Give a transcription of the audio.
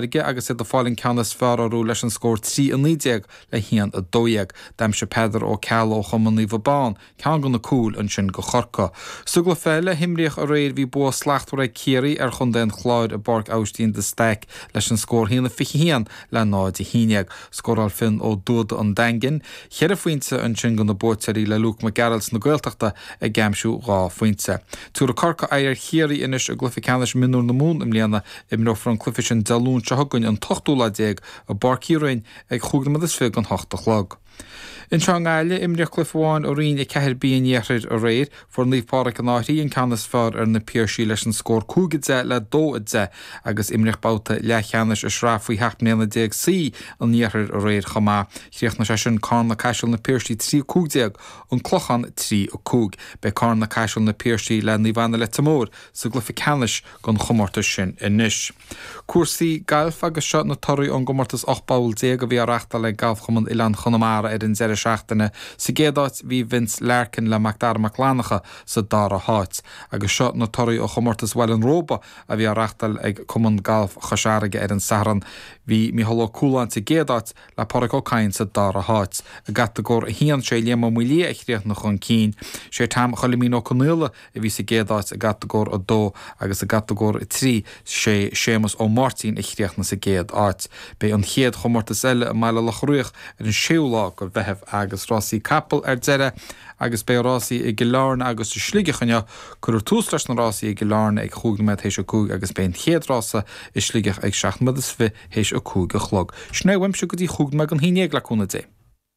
aige agus iad ag fáil an ceann is fearr orthu leis an scór 3 19 le 1 12. D'aimsigh Peadar Ó Ceallaigh ó chumann Naomh Abán ceann de na cúil ansin do Chorcaigh. Sa gcluiche eile a himríodh aréir bhí bua slachtmhar ag Ciarraí ar chontae an Chláir i bPáirc Aibhistín de Staic leis an scór 1 21 le 0 11. Scóráil Fionn Ó Dúda an Daingin cheithre phointe ansin do na buaiteoirí le Luke Mac Gearailt na Gaeltachta ag aimsiú dhá phointe. Tiúrfaidh Corcaigh aghaidh ar Chiarraí anois i gcluiche ceannais mionúr na Mumhan i mbliana Imreofar an cluiche sin Dé Luain seo chugainn an t-ochtú lá déag i bPáirc Uí Rinn ag a chúig nóiméad is fiche don hocht a chlog. Anseo i nGaillimh, imríodh cluiche amháin i Roinn 4B an Iarthair aréir. Fuair Naomh Pádraig an Fhairche an ceann is fearr ar Na Piarsaigh leis an scór cúig a deich le dó a deich agus imríodh babhta leathcheannais i Sraith Faoi Sheacht mBliana Déag C an Iarthair aréir chomh maith. Chríochnaigh sé sin Carna-Caiseal Na Piarsaigh 3 15 An Clochán 3 5. Beidh Carna-Caiseal Na Piarsaigh le Naomh Anna Leitir Móir sa gcluiche ceannais. an chomórtais sin anois. Cúrsaí Gailf agus seo na torthaí ón gcomórtas 18 bpoll a bhí á reachtáil ag Galfchumann Oileáin Chonamara ar an deireadh seachtaine, sa gcéad áit bhí Vince Larkin le Macdara Mac Fhlannacha sa dara háit. Agus seo na torthaí ó chomórtas Bhaile an Róba a bhí á reachtáil ag Cumann Gailf Chois Fharraige ar an Satharn, bhí Micheál Ó Cualáin sa gcéad áit le Pádraig Ó Cadhain sa dara háit. I gCatagóir 1, sé Liam Ó Maolaodha a chríochnaigh chun cinn, sé Tom Choilimín Ó Conaola a bhí sa gcéad áit i gCatagóir 2 agus i gCatagóir 3 sé Séamus Ó Máirtín a chríochnaigh sa gcéad áit. Beidh an chéad chomórtas eile i mBaile Locha Riach ar an séú lá de Mheitheamh agus rásaí capall ar deireadh agus beidh rásaí i gCill Airne agus i Sligeach inniu. Cuirfear tús leis na rásaí i gCill Airne ag a cúig nóiméad théis a cúig agus beidh an chéad rása i Sligeach ag seacht nóiméad is fiche théis a cúig a chlog. Sin é uaimse go dtí chúig nóiméad don haon déag le cúnamh Dé.